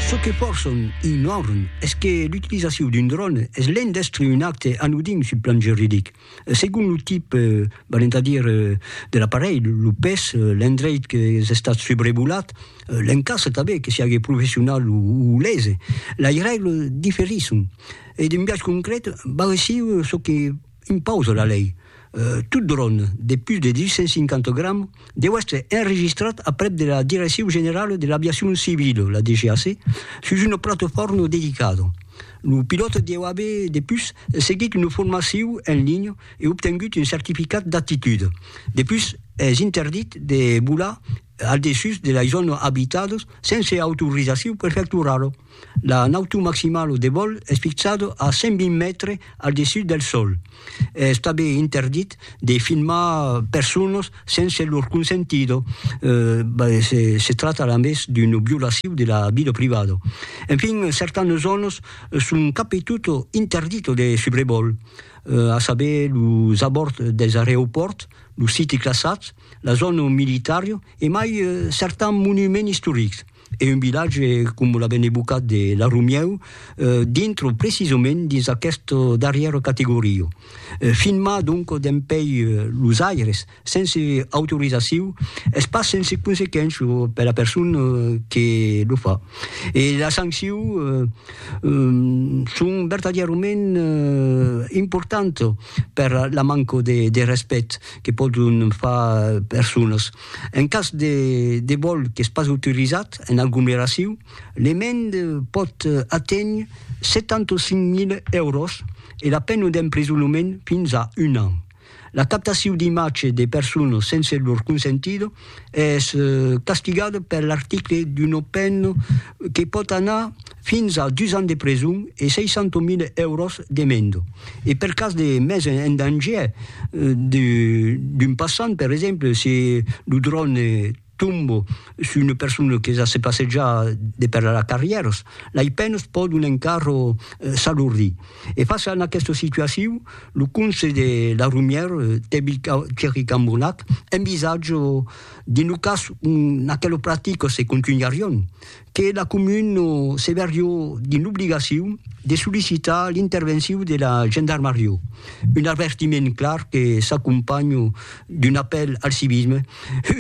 Çò que pòrson un norn es que l'utilizacion d'un dròn es lent d'èstre un acte anodin sul plan juridic. Segon lo tip, valent a dire, de l'aparelh, lo pes, l'endreit qu'es estat subrevolat, l'encastre tanben, que siágue professional o lese, lei règles diferisson e d'un biais concret barresiu çò que, Un paus de la lei. Tot dròn de pus de 250 grams deu èstre enregistrat aprèp de la Direccion Generala de l'Aviacion Civila, la DGAC, sus una platofòrma dedicada. Lo pilòt deu aver de pus seguit una formacion en linha e obtengut un certificat d'aptitud. De pus, es interdit de volar al dessús de lei zòna abitados sense autorizacion prefecturalo. La nautor maximalo de vòl es fixado a 120 mètres al dessús del sòl. Es tanben interdit de filmar personas sense lor consentido, se trata alames d'una violacion de la vida privada. Enfin, certanas zònas son cap e tot interditas de subrevòl, a saber los abòrds dels areopòrts, los sites classats, la zòna militària e mai certan monument istoric. E un vilatge com la ben evocat de La Romieu dintre precisament dins aquesta darrièra categoria. Filmar donc dempèi los aires sense autorizacion es pas sense consequença per la persona que lo fa e las sanccions son vertadièrament importantas per la manca de respècte que pòdon far personas. En cas de vòl qu'es pas autorizat en aglomeracion, l'emend pòt aténher 75.000 èuros e la pena d'emprisonament fins a un an. La captacion d'imatge de personas sense lor consentida es castigada per l'article d'una pena que pòt anar fins a dus ans de preson e 600.000 èuros d'emenda. E per cas de mes en danger d'un passant, per exemple, se lo dròne tomba sus una persona que se passeja de per las carrièras, lei penas pòdon encara s'alordir. E fàcia en aquesta situacion, Lo conse de la Romière, Tèbi Thierry Cambournac, envisatge dins lo cas ont aquela practica se contunharion, que la comuna se verrió dins l'obligacion de sollicitar l'intervencion de la gendarmaria, un avertiment clar que s'acompanha d'un apèl al civisme,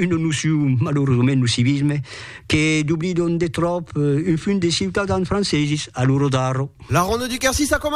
una nocion malauradament lo civisme que doblidon de tròp un fum de ciutadans franceses a l'ora d'ara. La Ronde du Quercy s'a començat!